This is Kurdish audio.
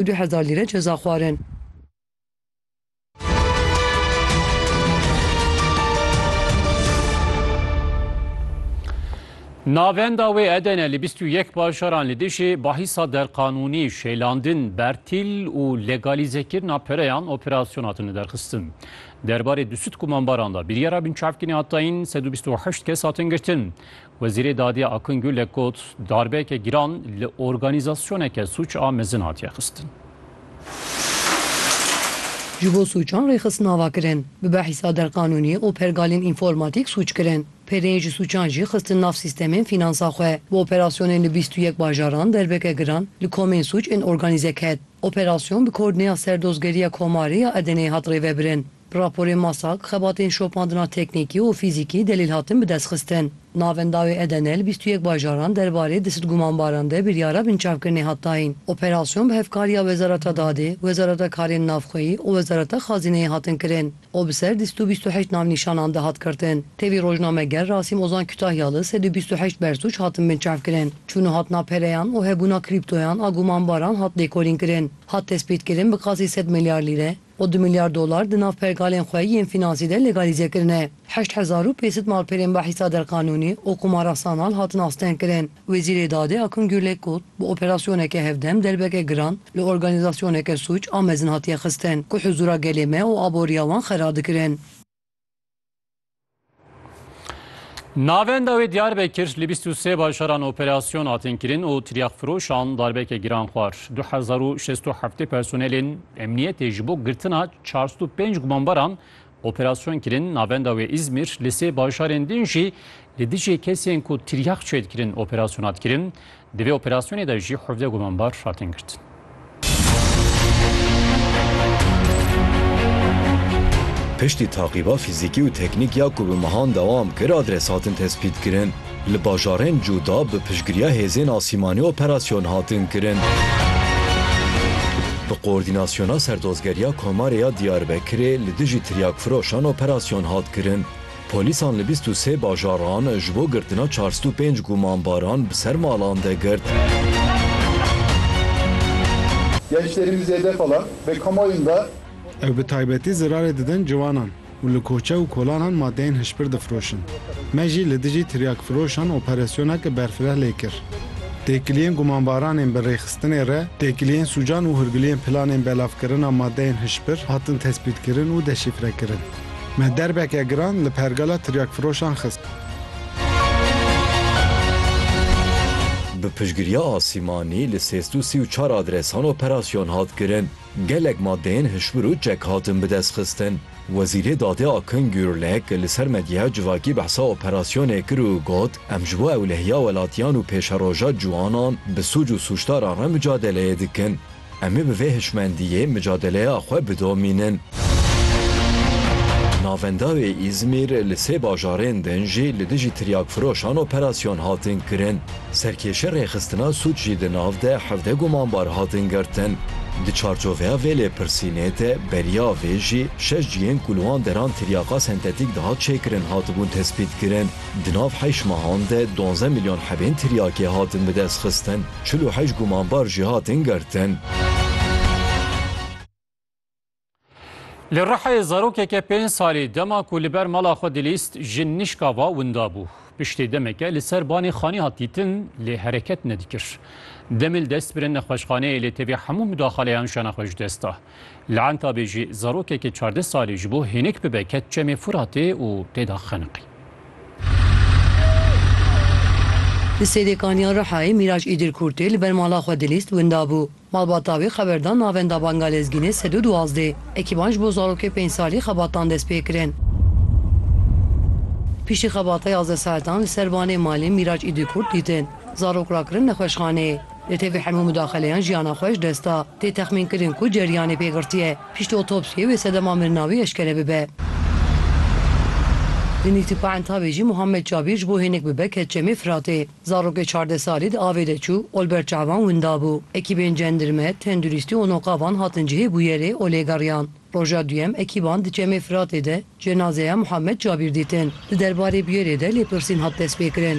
û du hezar lîre ceza xwarin. Navenda wê edene li bîst û yek bajaran li dijî bahîsa derqanûnî, şêlandin, bertîl û legalîzekirina pereyan operasyona hatine derxistin. Derbarê du sed kumanbaran de biryara binçavkirina tayîn sed û bîst û heşt kes hatin girtin. Wezîrê Dadê Akungû lê got, darbeyeke giran li organîzasyoneke sûc a mezin hatiye xistin. Ji bo sûcan rêxistin ava kirin, bi behîsa derqanûnî û pergalên înformatîk sûc kirin. Pêreyê ji sûcan jî xistin nav sîstemên fînansa xwe. Bi operasyonên li bîst û yek bajaran derbeke giran li komên sûc ên organîze ket. Operasyon bi koordîneya Serdozgeriya Komarê ya Edeneyê hat rêvebirin. Bi raporê MASAK, xebatên şopandina teknîkî û fîzîkî delîl hatin bidestxistin. Navenda wê Edenel bîst û yek bajaran derbarê di sid gumanbaran de biryara binçavkirinê hat dayîn. Operasyon bi hevkariya Wezareta Dadê, Wezareta Karên Navxweyî û Wezareta Xazîneyê hatin kirin û bi ser dîst û bîst û heşt navnîşanan de hat girtin. Tevî rojnameger Rasîm Ozan Kütahya li sed û bîst û heşt bersûc hatin binçavkirin. Çûn û hatina pereyan û hebûna krîptoyan a gumanbaran hat lêkolînkirin. Hat tespîtkirin bi qasî sed milyar lîre, û du milyar dolar di nav pergalên xwe yên fînansî de legalîze kirine. Heşt hezar û pêsit malperên behîsa derqanûnî û qumara sanal hatin astengkirin. Wezîrê Dadê Akun Gürlek got, Bi operasyoneke hevdem derbeke giran li organîzasyoneke sûc a mezin hatiye xistin ku huzûra gelê me û aboriya wan xera dikirin. Navenda wê Diyarbekir li 23 bajaran operasyon hatin kirin û tiryakfiroşan darbeke giran xwar. 2067 personelên emniyetê ji bo girtina 405 gumanbaran operasyon kirin navenda wê İzmir li sê bajarên din jî li dijê kesên ku tiryak çêdikirin operasyon hat kirin. Di vê operasyonê de jî hevdeh gumanbar hatin girtin. Piştî taqîba fîzîkî û teknîk ya ku bi mehan dewam kir adres hatin tespîtkirin. Li bajarên cuda bi piştgiriya hêzên asîmanî operasyon hatin kirin. Bi koordînasyona Serdozgeriya Komarê ya Diyarbekirê li dijî tiryakfiroşan operasyon hat kirin. Polîsan li bîst û sê bajaran ji bo girtina çar sed û pênc gumanbaran bi ser malan de girt. Gençlerimiz zêde falan ve kamuoyun da. Ew bi taybetî zirarê didin ciwanan û li koçe û kolanan madeyên hişbir difroşin. Me jî li dijî tiryakfiroşan operasyonek berfireh lê kir. Têkiliyên gumanbaranên bi rêxistinê re, têkiliyên sûcan û hûrgiliyên planên belavkirina madeyên hişbir hatin tespîtkirin û deşîfrekirin. Me derbeke giran li pergala tiryakfiroşan xist. Bi piştgiriya asîmanî li sê sed û sî û çar adresan operasyon hat kirin. Gelek madeyên hişbir û çek hatin bidestxistin. Wezîrê Dadê Akın Gürlek li ser medyaya civakî behsa operasyonê kir û got, Em ji bo ewlehiya welatiyan û pêşeroja ciwanan bi sûc û sûcdaran re micadeleyê dikin. Em ê bi vê hişmendiyê micadeleya xwe bidomînin. Navenda wê Îzmîr li sê bajarên din jî li dijî tiryakfiroşan operasyon hatin kirin. Serkêşa rêxistina sûc jî di nav de hevdeh gumanbar hatin girtin. Di çarçoveya vê lêpirsînê de beriya vê jî şeş cihên ku li wan deran tiryaqa sentetîk dihat çêkirin hatibûn tespîtkirin. Di nav heşt mehan de donzdeh milyon hebên tiryakê hatin bidestxistin. çil û heşt gumanbar jî hatin girtin. Li Rihayê zarokeke pênc salî dema ku li ber mala xwe dilîst ji nişka va winda bû. Piştê demeke li ser banê xanî hat dîtin lê hereket nedikir. Demil dest birîn nexweşxaneyê lê tevî hemû mudaxaleyan jana xwe ji dest da. Li Entabê jî zarokekî çardeh salî ji bo hênik bibe ket çemê Furatê û tê de xeniqî. Di Sêdêkaniya Rihayê Mîraç Îdir Kûrtê li ber mala xwe dilîst winda bû. Malbata wê xeber da navenda Banga Lezgînê sed û duwazdeh. Ekîban ji bo zarokê pênc salî xebatan dest pê kirin. Piştî xebata yazdeh saetan li ser banê malê Mîraç Îdir Kûrt dîtin. Zarok rakirin nexweşxaneyê. Li tevî hemû mudaxeleyan jiyana xwe ji dest da. Tê texmînkirin ku ceryanê pê girtiye pişt otopsiyê wê sedema mirina wî eşkere bibe. Di nîzika Entawê jî Muhammed Cabîr ji bo hênik bibe ket Çemê Firatê. Zarokê çardeh salî di avê de çû, olberça wan winda bû. Ekîbên cendirme, tendurîstî û noqa van hatin cihê bûyerê û lêgeriyan. Roja duyem ekîban di Çemê Firatê de cenazeya Muhammed Cabîr dîtin. Di derbarê bûyerê de lêpirsîn hat destpêkirin.